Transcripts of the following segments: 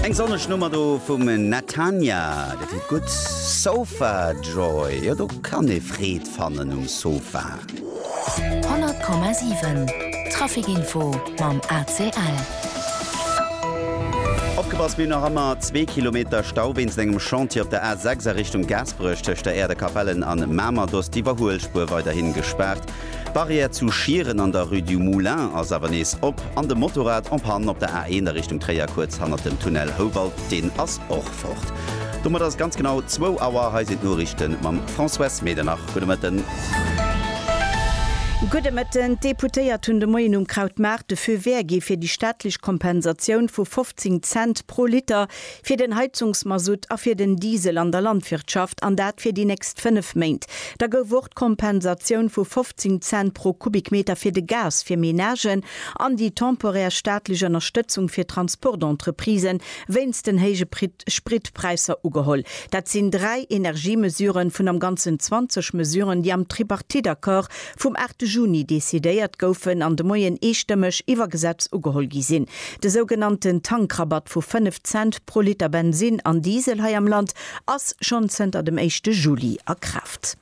Eng sonneg Nummer do vum Natania, dat heet gutt Sofa Joy. Jo do kann ee Freed fannen um Sofa. 100,7 Traficinfo mam ACL. Opgepasst, mir hunn nach ëmmer zwee Kilometer Stau wéinst engem Chantier op der A6 a Richtung Gaasperech tëscht der Äerder Kapellen an Mamer. Do ass d'Iwwerhuelspuer weiderhi gespaart. D'Barrière zu Schieren an der Rue du Moulin ass awer nees op an de Motorrad en panne op der A1 a Richtung Tréier kuerz hannert dem Tunnel Houwald, deen ass och fort. Domat ass et ganz genau zwou Auer. Hei sinn d'Noriichte mam Françoise Medernach. Gudde Mëtten. Gudde Mëtten. D'Deputéiert hunn de Moien um Krautmaart de Feu vert gi fir déi staatlech Kompensatioun vu 15 Cent pro Liter fir den Heizungsmasutt a fir den Diesel an der Landwirtschaft, an dat fir déi nächst fënnef Méint. Da gouf och d'Kompensatioun vu 15 Cent pro Kubikmeter fir de Gas fir Menagen an déi temporär staatlech Ënnerstëtzung fir Transportentreprisen wéinst den héije Spritpräisser ugeholl. Dat sinn dräi Energiemesuren vun am Ganzen 20 Mesuren, déi am Tripartite-Accord vum 8 Juni decidéiert goufen an de Moien eestëmmeg iwwer Gesetz ugeholl gi sinn. De sougenannten Tankrabatt vu 5 Cent pro Liter Bensinn an Diesel hei am Land ass schonn zënter dem éischte Juli a Kraaft.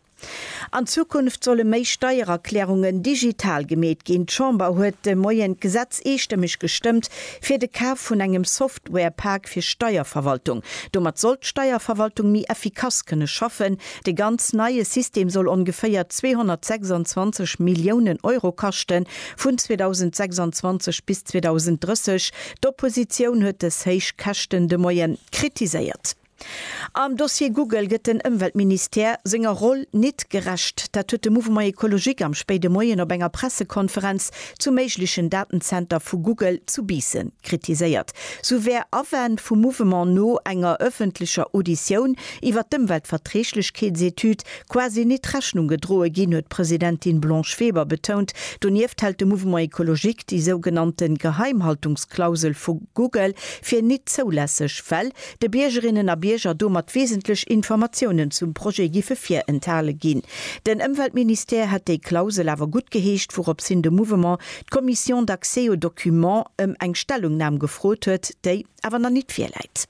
An Zukunft solle méi Steiererklärungen digital gemeet ginn. D'Chamber huet de Moien d'Gesetz eestëmmeg gestëmmt, fir de Kaf vun engem Software-Programm Ware Pak fir Steierverwaltung. Domat soll d'Steierverwaltung méi effikass kënne schaffen. Dee ganz neie System soll ongeféier 226 Milliounen Euro kaschten, vun 2026 bis 2030. D'Oppositioun huet dës héich Käschten de Moien kritiséiert. Am Dossier Google gëtt den Ëmweltministère senger Roll nit gerecht. Dat huet de Mouvement Ecologique am spéide Moien op enger Pressekonferenz zum méiglechen Datenzenter vu Google zu Biissen kritiséiert. Sou wär Awänn vum Mouvement no enger ëffentlecher Auditioun iwwer d'Ëmweltverträglechkeetsetüd quasi nit Rechnung gedroe ginn, huet d'Presidentin Blanche Weber betount. Donieft hält de Mouvement Ecologique déi sougenannte Geheimhaltungsklausel vu Google fir nit zoulässeg, well de Biergerinnen a Bierger domat wesentlech Informatiounen zum Projet giffe virenthale ginn. Den Ëmweltministère hätt déi Klausel awer guttgeheescht, wourops hin de Mouvement d'Commission d'accès aux documents ëm eng Stellungnam gefrot huet, déi awer nach nit virläit.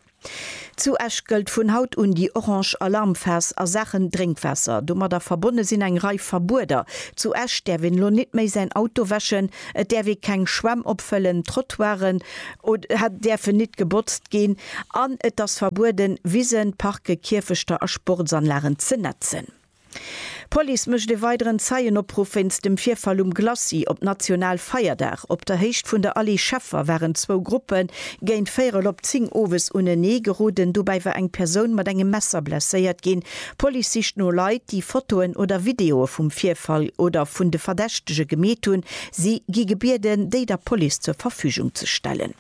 Zu Esch gëllt vun haut un déi orange Alarmphas a Saachen Drénkwaasser. Domadder verbonne sinn eng Rei Verbueder. Zu Esch däerf een elo nit méi säin Auto wäschen, Et däerf ee keng Schwämm opfëllen, d'Trottoiren däerfen nit gebotzt ginn an et ass verbueden, Wisen, Parke, Kierfechter a Sportsanlagen ze netzen. D'Police mécht e weideren Zeienopruff wéinst dem Virfall um Glacis op Nationalfeierdag. Op der Héicht vun der Allée Scheffer waren zwou Gruppe géint véierel op zéng owes unenee geroden. Dobäi war eng Persoun mat engem Messer blesséiert ginn. D'Police sicht no Leit, déi Fotoen oder Videoe vum Virfall oder vun de Verdächtege gemeet hunn. Si gi gebieden, déi der Police zur Verfügung ze stellen.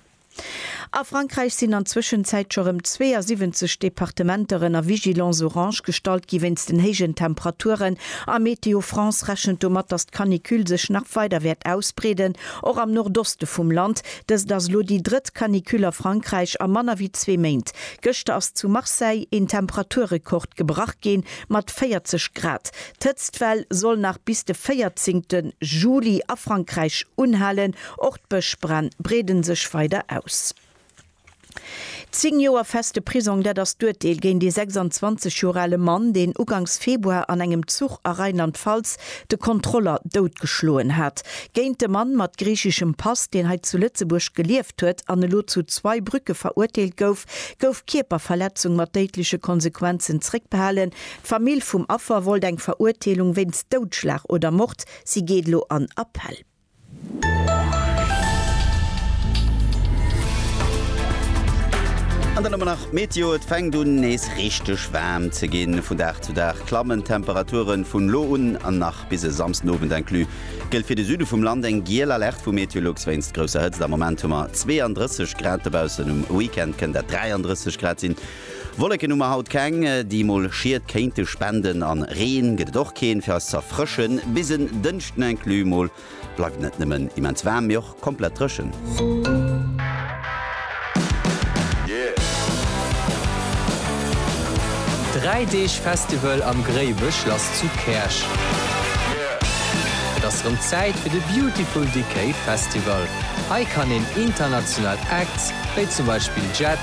A Frankräich sinn an Zwëschenzäit scho rëm 72 Departementer ënner Vigilance orange gestallt gi wéinst den héijen Temperaturen. A Météo France rechent domat, datt d'Canicule sech nach weider wäert ausbreeden, och am Nordoste vum Land. Dëst ass elo déi drëtt Canicule a Frankräich a manner wéi zwee Méint. Gëschter ass zu Marseille een Temperaturrekord gebrach ginn, mat 40 Grad. D'Hëtztwell soll nach bis de 14 Juli a Frankräich unhalen. Och d'Bëschbränn breeden sech weider aus. Zéng Joer feste Prisong, dat ass d'Urteel géint ee 26 Joer ale Mann, deen ugangs Februar an engem Zuch a Rheinland-Pfalz de Kontroller doutgeschloen hat, géint de Mann mat griicheschem Pass, deen hei zu Lëtzebuerg gelieft huet an elo zu Zweibrücke verurteelt gouf, gouf Kierperverletzung mat déidleche Konsequenzen zréckbehalen. D'Famill vum Affer wollt eng Verurteelung wéinst Doudschlag oder Mord. Si geet elo an Appell. An dann hu mer nach d'Meteo, Et fänkt un nees richteg waarm ze ginn. Vun Dag zu Dag klammen d'Temperaturen. Vun elo un an nach bis e Samsdenowend inclus gëllt fir de Süde vum Land eng giel Alerte vu Meteolux wéinst grousser Hëtzt. Am Moment hu mer 32 Grad dobaussen, um Weekend kënnt dat 33 Grad sinn. Wolleken hu mer haut keng, déi mol Schied kéinte spenden. An Reen gëtt et och keen, fir eis ze erfrëschen. Bis en Dënschden inclus mol bleift et net nëmmen immens waarm, mee och komplett dréchen. Dräi Deeg Festival am Gréiweschlass zu Käerch. Et ass rëm Zäit fir de Beautiful Decay Festival. Hei kann een international Acts, wéi zum Beispill Jet,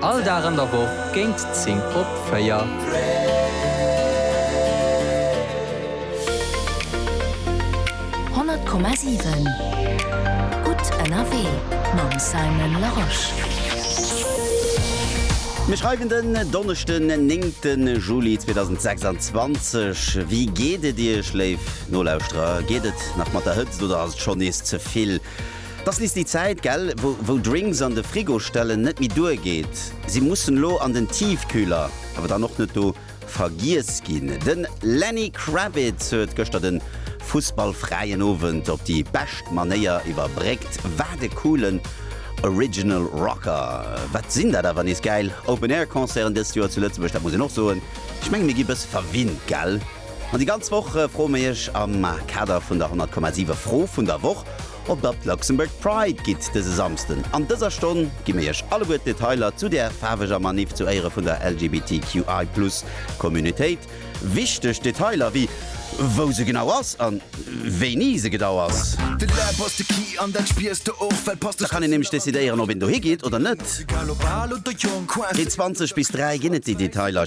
All Dag an der Woch géint 10 op 4. Honnert Komma siwen Gutt ënnerwee mam Simon Larosche. Mir schreiwen den Donneschden den 9 Juli 2026. Wéi geet et Iech léif Nolauschterer? Geet et nach mat der Hëtzt oder ass et schonn nees ze vill? Dass liss déi Zäit gell wou Drinks an de Frigo stellen net méi duer geet. Si mussen lo an den Tiefkühler, awer dann och net do vergiess ginn. Den Lenny Kravitz huet gëschter den fussballfräien Owend op déi bescht Manéier iwwerbréckt. Wat e coolen Original Rocker. Wat sinn dat awer nees gäil Open Air Concerten dëst Joer zu Lëtzebuerg, dat muss een och soen. Ech mengen mir gi bësse verwinnt gell. An déi ganz Woch froe mir iech am Kader vun der 100,7 Fro vun der Woch, ob der op d'Luxembourg Pride gitt dëse Samsden. An dëser Stonn gi mir iech alleguer d'Detailer zu där faarweger Maniff zu Éiere vun der LGBTQI Plus Communautéit. Wichteg Detailer wéi wou se genau ass a wéini se gedau ass. Da kann een nämlech decidéieren, ob een dohi geet oder net. Vun 20 bis 3 ginn et déi Detailer.